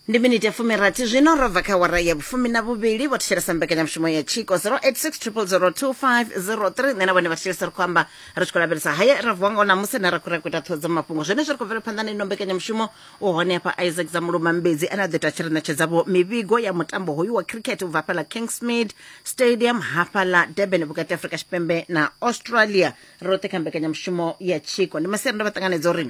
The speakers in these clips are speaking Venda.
ndi miniti ya fumirathi zwino ro bva kha wara ya vhufumi na vhuvhili vho thetshelesa mbekanyamushumo ya tshiko 0860002503 nṋe na vhone vha thetshelesa ri khou amba ri tshi khou lavhelesa haya ra vuwa ngao namusi ne ra khou ri a khou ita ṱhoho dza mafhungo zwenezwi ri khou bvela phanḓa na ino mbekanyamushumo u hone hafha isaac dza muluma mbedzi ane a ḓo ita tshi ri ṋetshedzavho mivhigo ya mutambo hoyu wa cricket u bva hafhaḽa kingsmead stadium hafhaḽa durban vhukati ha afrika tshipembe na australia roṱhe kha mbekanyamushumo ya tshiko ndi masiari ndo vha ṱanganedza uri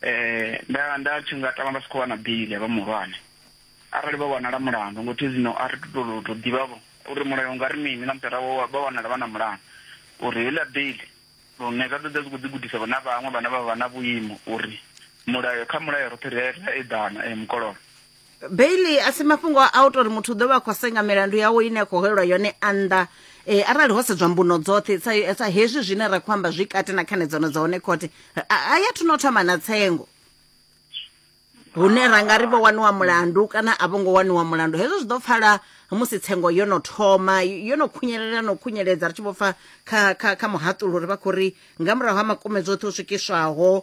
Eh, nda nda tshi nga tama vha si khou wana bili ya vha muhulwane arali vha wanala mulandu ngo thi zwino a ri to to to ḓivhavho uri mulayo u nga ri mini na mutara wa vha wanala vha na mulandu uri heiḽa bili lune zwa ḓoḓa zwi khou ḓi gudisa vhona vhaṅwe vhane vha vha na vhuimo uri mulayo kha mulayo roṱhe ri a ri a eḓana eh, mukololo beili a si mafhungo a u tori muthu u ḓo vha a khou senga milandu yawe ine a khou holelwa yone a nnḓa e, arali ho sedzwa mbuno dzoṱhe sa, sa hezwi zwine ra khou amba zwi kati na khanedzano dza hone khothe a ya thuno thoma na tsengo hune ra nga ri vho waniwa mulandu kana a vho ngo waniwa mulandu hezwo zwi ḓo pfala musi tsengo yo no thoma yo no khunyelela no khunyeledza ri tshi vho pfa kha, kha, kha muhaṱulo uri vha khou ri nga murahu ha makume dzoṱhe u swikiswaho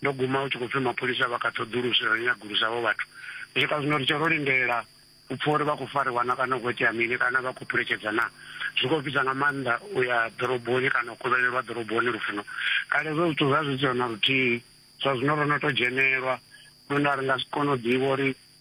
ndo guma hu tshi khou pfhi mapholisa vha kha ṱhoḓuluso ya u nyagulusa havho vhathu u swika zwino ri tshe ro lindela u pfha uri vha khou fariwa na kana u khou itea mini kana vha khou phuletshedza na zwi khou fhisa nga maanḓa u ya ḓoroboni kana u kovhelelwa ḓoroboni lufuno kale zwo zwithu zwa zwi siho na luthihi zwa zwino ro no to dzhenelwa lune a ri nga si kone u ḓivha uri